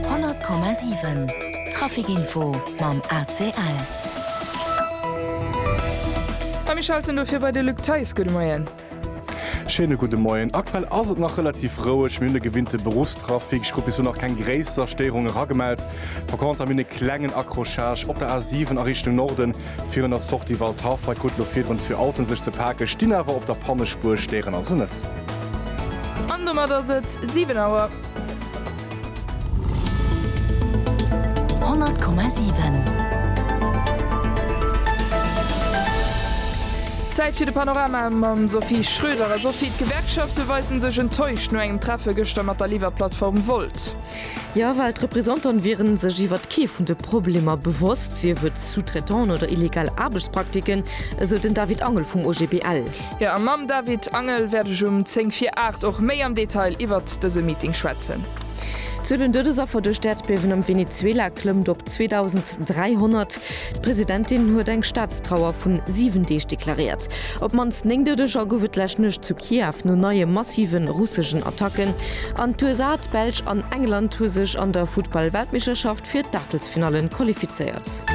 100,7 Traficinfo mam ACL. A mir schalten dofir bei de Luc Theis. Gudde Moien. Schéine gudde Moien. Aktuell ass et nach relativ roueg. Mir hunn de gewinnte Beruffstrafic. Ech krut bis elo nach keng gréisser Stéierungen eragemellt. Par contre hu mir e klengen Accrochage op der A7 a Richtung Norden. Virun der Sortie Waldhafa krute lo virdrun zwee Autoen sech ze paken, stinn awer op der Pannespuer, stéieren also net. An domat ass et 7 Auer. 100,7. Zäit fir de Panorama mam Sophie Schröder. A Sophie, d'Gewerkschafte weisen sech enttäuscht no engem Treffe gëschter mat der Liwwerplattform Wolt. Jo, well d'Representantë wiere sech iwwert kee vun de Problemer bewosst, sief et Sous-traitants oder illegal Aarbechtspraktiken, esou den David Angel vum OGBL. Jo, a mam David Angel wäert ech um zéng vir aacht och méi am Detail iwwert dëse Meeting schwätzen. D'Zuel un Doudesaffer duerch d'Äerdbiewen am Venezuela klëmmt op 2.300. D'Presidentin huet eng Staatstrauer vun 7 Deeg deklaréiert. Op d'mannst 9 Doudeger gouf et d'lescht Nuecht zu Kiew no neie massive russeschen Attacken. An d'USA, d'Belsch an England hu sech an der Futtball-Weltmeeschterschaft fir d'Aachtelsfinalle qualifizéiert.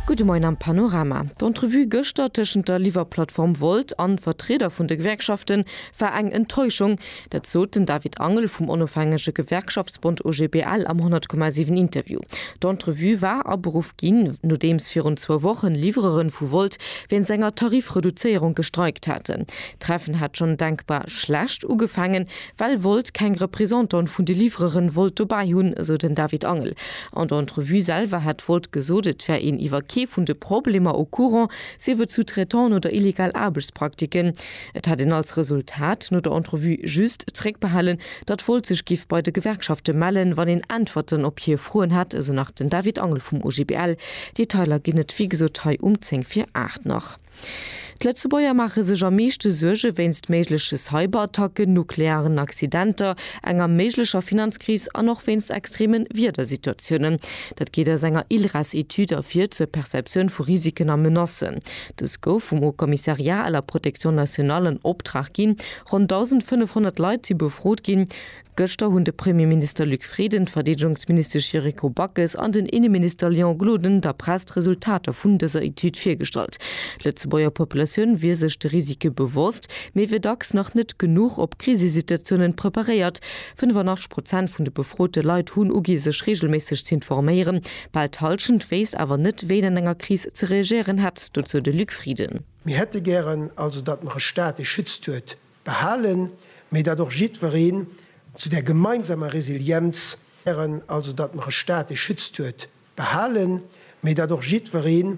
Gudde Moien am Panorama. D'Entrevue gëschter tëschent der Liwwerplattform Wolt an Vertrieder vun de Gewerkschaften war eng Enttäuschung. Dat sot den David Angel vum onofhängege Gewerkschaftsbond OGBL am 100,7 Interview. D'Entrevue war aberuff ginn, nodeems virun zwou Wochen Livreuren vu Volt wéinst enger Tarifreduzéierung gestreikt haten. D'Treffen hat schonn denkbar schlecht ugefaangen, well Volt keng Représentant vun de Livreuren wollt dobäi hunn, esou den David Angel. An der Entrevue selwer hätt Volt gesot, et wär een iwwer kee vun de Problemer au courant, sief et sous-traitance oder illegal Aarbechtspraktiken. Et hätt een als Resultat no der Entrevue just zréckbehalen, datt wollt sech giff bei de Gewerkschafte mellen, wann een Äntwerten op hir Froen hätt, esou nach den David Angel vum OGBL. Detailer ginn et wéi gesot hei um 10 vir 8 nach. D'Lëtzebuerger maache sech am meeschte Suerge wéinst méigleche Cyberattacken, nuklearen Accidenter, enger méiglecher Finanzkris an och wéinst extreme Wiedersituatiounen. Dat geet aus enger ILRES-Etüd ervir zur Perceptioun vu Risiken a Menacen. Dës gouf vum Haut Commissariat à la protection nationale an Optrag ginn. Ronn 1.500 Leit si befrot ginn. Gëschter hunn de Premierminister Luc Frieden, d'Verdeedegungsministesch Yuriko Backes an den Inneminister Léon Gloden der Press d'Resultater vun dëser Etüd virgestallt. D'Lëtzebuerger Populatioun wier sech de Risike bewosst, mee wier dacks nach net genuch op Krisesituatiounen preparéiert, 85 Prozent vun de befrote Leit hunn ugi sech reegelméisseg ze informéieren. Bal d'Hallschent wéisst awer net, wéi een an enger Kris ze reagéieren hätt, dozou de Luc Frieden. Mir hätte gären also, datt mer e Staat, dee schützt, huet, behalen, mee datt och jiddwereen zu där gemeinsamer Resilienz, gären also, datt mer e Staat, dee schützt, huet, behalen, mee datt och jiddwereen